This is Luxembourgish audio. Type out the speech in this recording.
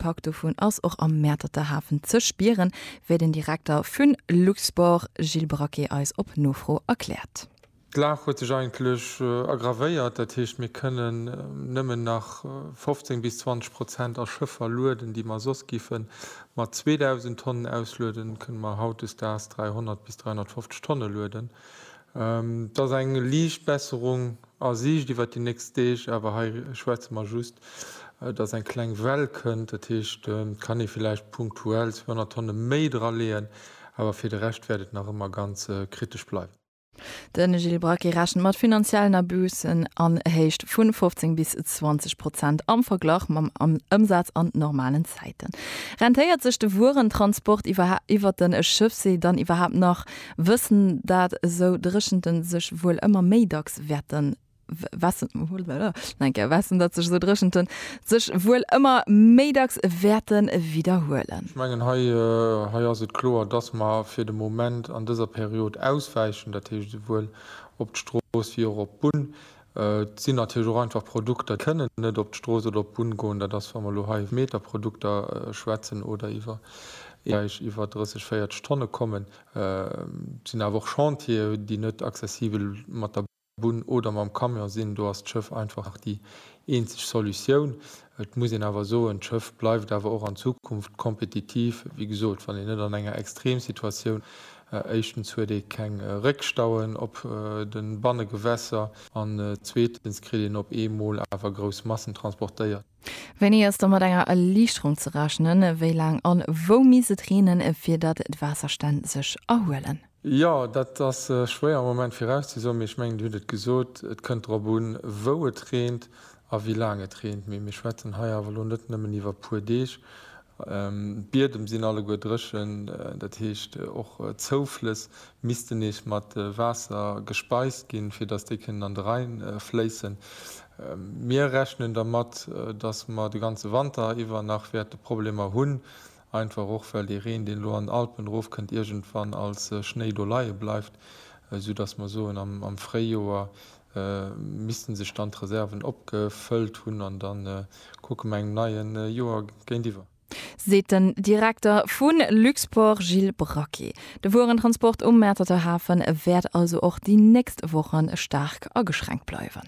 Pak dovun ass och am Mäerterter Hafen ze spieren, wéi den Direkter vun Luxport Gilles Braquet eis op Nofro erkläert. D'Lag huet sech eigentlech aggravéiert, dat heescht mir kënnen nëmmen nach 15 bis 20 Prozent a Schëffer lueden, déi mer soss giffe mat 2.000 Tonnen auslueden, kënne mer hautdesdaags 300 bis 350 Tonne lueden. Et ass eng liicht Besserung a Siicht iwwert déi nächst Deeg, awer hei schwätze mer just, dass eng kleng Well kënnt. Dat heescht, et kann ee villäicht punktuell 200 Tonne méi draleeën, awer fir de Rescht wäert et nach ëmmer ganz kritesch bleiwen. De Gilles Braquet rechent mat finanziellen Abusën an Héicht vu 15 bis 20 Prozent am Verglach mam Ëmsaz an normalen Zäiten. Rentéiert sech de Wuerentransport iwwer de Schëffsee dann iwwerhaapt nach? Wëssen dat esou Dréchenten sech wuel ëmmer méi dacks wäerten widderhuelen. Ech mengen, hei ass et kloer, dass mer fir de Moment an dëser Period auswäichen, dat heescht esouwuel op d'Strooss wéi och op d'Bunn. Et sinn natierlech och einfach Produkter, déi kënnen net op d'Strooss oder op d'Bunn goen. Dat ass, wa mer elo hei iwwer Meterprodukter schwätzen oder iwwer Eeër, déi iwwer 30, 40 Tonne kommen. Et sinn awer och Chantieren, déi net accessibel mat der Bunn oder mam Camion sinn. Do ass d'Schëff einfach nach déi eenzeg Solutioun. Et muss een awer soen, d'Schëff bleift awer och an Zukunft kompetitiv. Wéi gesot, wann een net an enger Extremsituatioun, éischtens huet ee keng Réckstauen op de Bannegewässer an zweetens kritt een op eemol awer grouss Massen transportéiert. Wéini ass da mat enger Erliichterung ze rechnen? Wéi laang an wou misst et reenen, fir datt d'Waasserstänn sech erhuelen? Jo, dat ass schwéier am Moment virauszesoen, mee ech mengen, Dir hutt et gesot, et kënnt drop un, wou et reent a wéi laang et reent. Mee mir schwätzen hei awer elo net nëmmen iwwer e puer Deeg. D'Biedem sinn alleguer dréchen, dat heescht, och d'Zouflëss missten nees mat Waasser gespeist ginn, fir datt déi kënnen an de Rhäin fléissen. Mir rechnen dermat, datt mer de ganze Wanter iwwer nach wäerte Problemer hunn Einfach och well dee Reen, deen elo an den Alpen erof kënnt, iergendwann als Schnéi do leie bleift, sou datt mer soen, am Fréijoer misste sech dann d'Reserven opgefëllt hunn an da kucke mer engem neie Joer géintiwwer. Seet den Direkter vu Luxport Gilles Braqué. De Wuerentransport um Mäerterter Hafe wäert also och déi nächst Woche staark ageschränkt bleiwen.